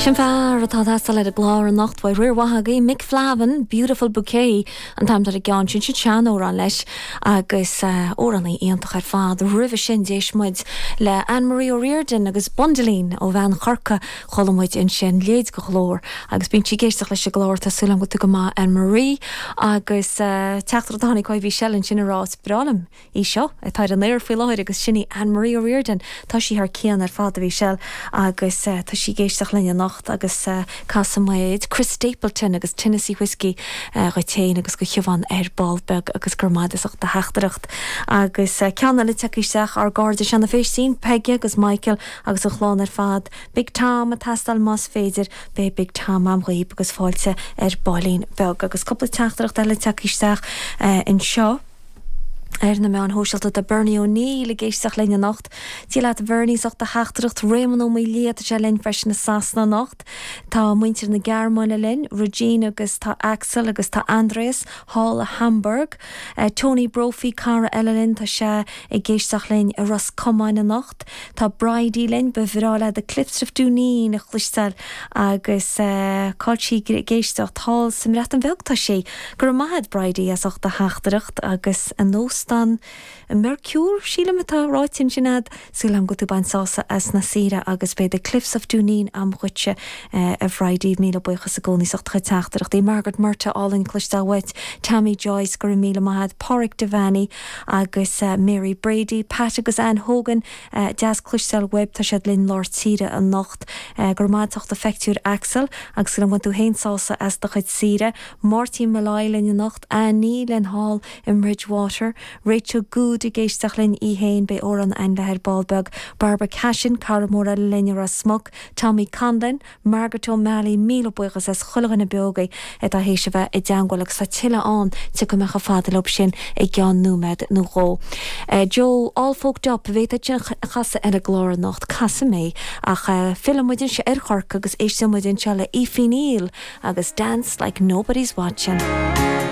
Sin fear atá ag teastáil le haghaidh an chláir anocht, go raibh míle maith agat, Mick Flavin, Beautiful Bouquet, an t-ainm atá ar an gceann sin, sin sean-amhrán leis, agus amhránaí iontach ar fad. Roimhe sin d'éist muid le Anne Marie O'Riordan agus Bundleen ó bhean Chorcaí, chuala muid ansin léi ar an gclár, agus bíonn sí ag éisteacht leis an gclár, tá súil agam go bhfuil tú go maith Anne Marie, agus teachtaireacht a tháinig ó Michelle ansin ag rá is breá liom Í seo atá ar an aer faoi láthair agus sin í Anne Marie O'Riordan. Tá sí thar cionn ar fad, a Mhichelle, agus tá sí ag éisteacht linn anocht agus casfaimid Chris Stapleton agus Tennessee Whiskey dhuit féin agus do Shiobhán ar ball beag agus go raibh maith a'd as ucht do theachtaireacht. Agus ceann eile ag tíocht isteach, ár gcairde Seán na Faoistín, Peige agus Michael agus an chlann ar fad. Big Tom ag teastáil más féidir, beidh Big Tom a'm dhaoibh agus fáilte ar ballín beag. Agus cúpla teachtaireacht eile ag tíocht isteach anseo. ar na meáin shóisialta tá Bernie O'Neill ag éisteacht linn anocht. Dia leat Bhernie, as ucht do theachtaireacht. Réamonn Ó Maolaodha, tá sé linn freisin i Sasana anocht. Tá muintir na Gearmáine linn, Regine agus tá Axel agus tá Andreas thall i Hamburg. Tony Brophy, cara eile linn, tá sé ag éisteacht linn i Ros Comáin anocht. Tá Bridie linn, ba bhreá lei The Cliffs of Dooneen a chloisteáil agus cáil sí ag éisteacht thall sa mBreatain Bheag tá sí. Go raibh maith a'd Bridie as ucht do theachtaireacht agus an óstán Mercure, sílim atá ráite ansin a'd. Súil agam go bhfuil tú ag baint sása as an saoire agus beidh The Cliffs of Dooneen a'm dhuitse a Bhridie. Míle buíochas i gcónaí as ucht do chuid teachtaireachtaí. Margaret Murtagh álainn cloisteáil uait. Tammy Joyce go raibh míle maith a'd. Páraic Devaney agus Mary Brady. Pat agus Anne Hogan deas cloisteáil uaibh. Tá siad linn lár tíre anocht. Go raibh maith a'd as ucht do phictiúir Axel agus súil agam go bhfuil tú féin ag baint sása as do chuid saoire. Máirtín Molloy linn anocht, anocht linn thall i mBridgwater, Rachel Goode ag éisteacht linn í fhéin, beidh amhrán againn léithi ar ball beag, Barbara Cashin, cara mór eile linn i Ros Muc, Tommy Conlon, Margaret O Malley, míle buíochas as chuile dhuine beo agaibh atá théis a bheith i dteangmháil agus tá tuilleadh ann, tiocfaidh mé chomh fada leob sin i gceann nóiméad nó dhó. Joe, all folked up, an bhféadfainn é sin a chasadh ar an gclár anocht, casfaidh mé. Ach filleann muid anseo ar Chorcaigh agus éisteann muid anseo le Effie Neill agus Dance Like Nobody's Watching.